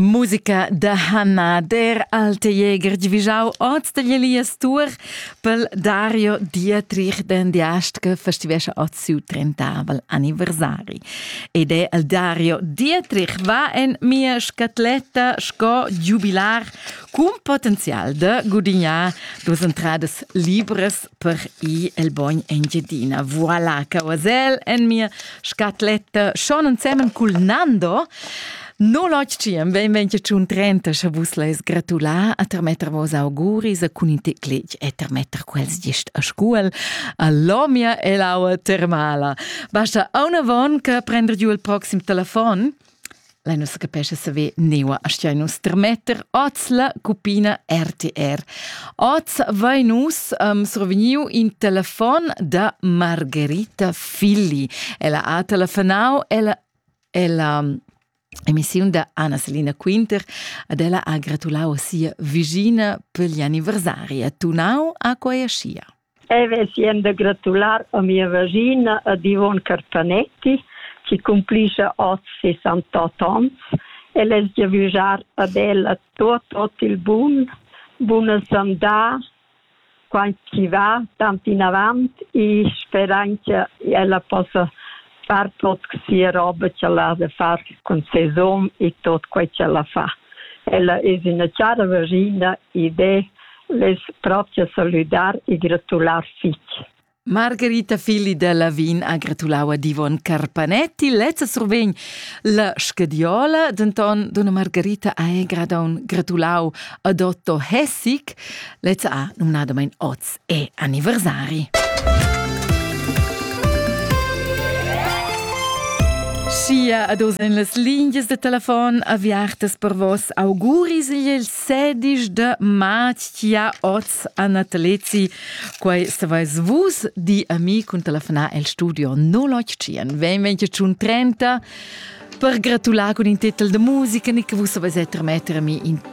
Musica da Hanna der alte Jäger divigiau oz dagli Elias Tour pel Dario Dietrich den Diast che festivescha oz siu trentavel anniversari. Ed è il Dario Dietrich va en mia scatletta sco giubilar cun potenzial da gudignar duas entradas libres per i el bogn Engiadina. Voilà, Cauasel en mia scatletta. Schon ensemen cul Nando. No lotgiem, benvenche tschun trenta, sche vus leis gratulà a termetter vos auguris a cun in teclec e termetter quels gist a scuol a lomia e l'aua termala. Basta una von che prender giù il proxim telefon. Lei non se capesce saver neua astia nus termetter oz la cupina RTR. Oz vai nus um, survegniu in telefon da Margherita Filli. Ella ha telefonau, ella, ella um, emissiun da Anna Selina Quinter, ad ella ha gratulau a sia vigina per gli anniversari. Ha tunau a quei ascia. Eu vesien da gratular a mia vagina ad Yvonne Carpanetti chi cumplischa hoz 68 ans. El es giavüschar ad ella tuot tuot il bun, buna sandà, quant chi va tant inavant e sperain cha ella possa far tot sia roba ch'el ha da far cun ses um e tot quei ch'ella fa. Ella es üna chara vaschina ed e less propcha salüdar e gratular fich. Margherita Filli da Lavin ha gratulau ad Ivon Carpanetti. Lezza survegn la scadiola, denton donna Margherita ha gradon gratulau ad Otto Hessig. Lezza ha numnadamein oz è anniversari. Sia a dos en las lingias de telefon aviartas per vos auguris il 16 de mattia oz a Natalezi. Quai savais vus di a mi cun telefonar el studio 081 20 30 per gratular con il titel de musica che vus savais trasmettere a mi in